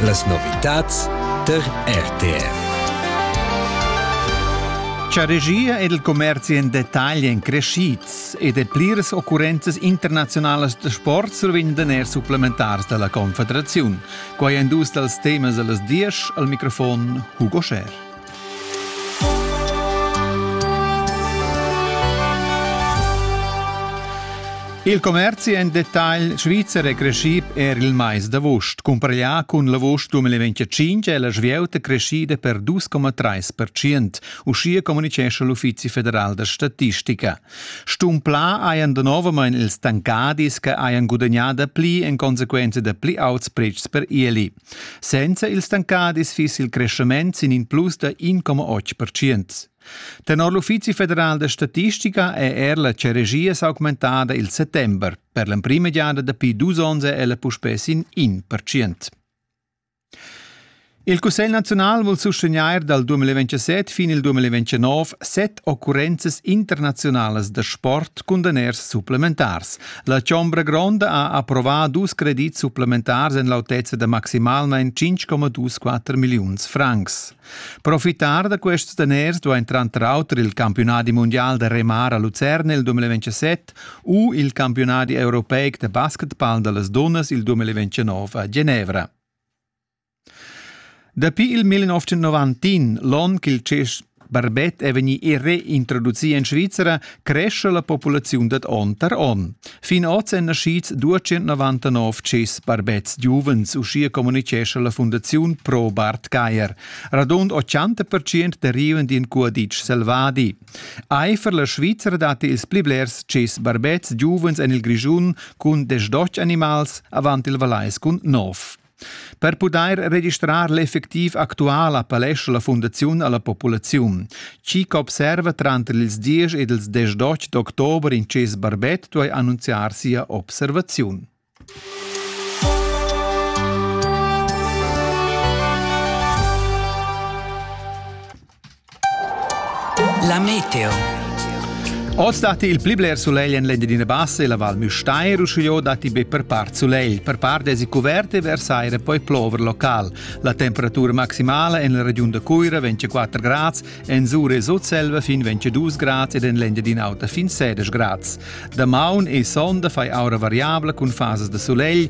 Las novitads tar RTR. Cha regia ed il commerzi in detagl èn crescids ed pliras occurrenzas internaziunalas da sport survegn daner supplementars da la Confederaziun. Quai èn dus dals temas da las diesch al microfon Hugo Scher. Il commerzi en detagl svizzer è creschì er il mais d'avust. Cumpareglià cun l'avust 2025 è la svieuta creschida per 2,3%, uschia communitgescha l'Uffizi federal da statistica. Stumplà hajan danovamain ils tancadis che hajan gudagnà da pli en consequenza da pli auts pretschs per ieli. Senza il stancadis fiss il creschement sin in plus da 1,8 percent. Tenor l'Uffizi federal da statistica è er la ceregia s'augmentada il settember. Per l'emprima giada dapi dus onns è ella puspè sin 1 percent. Il Cussegl nazional vul sustegnair dal 2027 fin il 2029 set occurrenzas internaziunalas da sport cun daners supplementars. La chombra gronda ha approvà dus credits supplementars en l'autezza da maximalmain 5,24 milliuns francs. Profitar da quests daners duain tranter auter il campiunadi mundial da remar a Lucerna il 2027 u il campiunadi europeic da basketball da las dunnas il 2029 a Genevra. Dapi il 1990, l'onn ch'il tschess barbet è vegnì reintroducì en Svizra, cresce la populaziun dad onn tar onn. Fin oz èn naschids 299 tschess barbets giuvens, uschia communitgescha la fundaziun Pro Bart Geier. Radund 80% derivan d'in cuaditsch selvadi. Eifer la Svizra datti ils pli blers tschess barbets giuvens en il Grischun cun desch animals avant il Valais cun nov. Per pudair registrar l'effectiv actual appellescha la Fundaziun a la populaziun. Chi ch'observa tranter ils 10 ed ils 18 d'october in tschess barbet duai annunziar sia observaziun. La meteo. Oz datti il pli bler sulegl en l'Engiadina Bassa e la Val Müstair, uschia datti be per part sulegl. Per part èsi cuvert e vers aira poi plover local. La temperatura maximala en la regiun da Cuira vegn 4 grads, en Zura e Sutselva fin 22 grads ed en l'Engiadina Auta fin 16 grads. Damaun e sonda fai aura variabla cun fasas da sulegl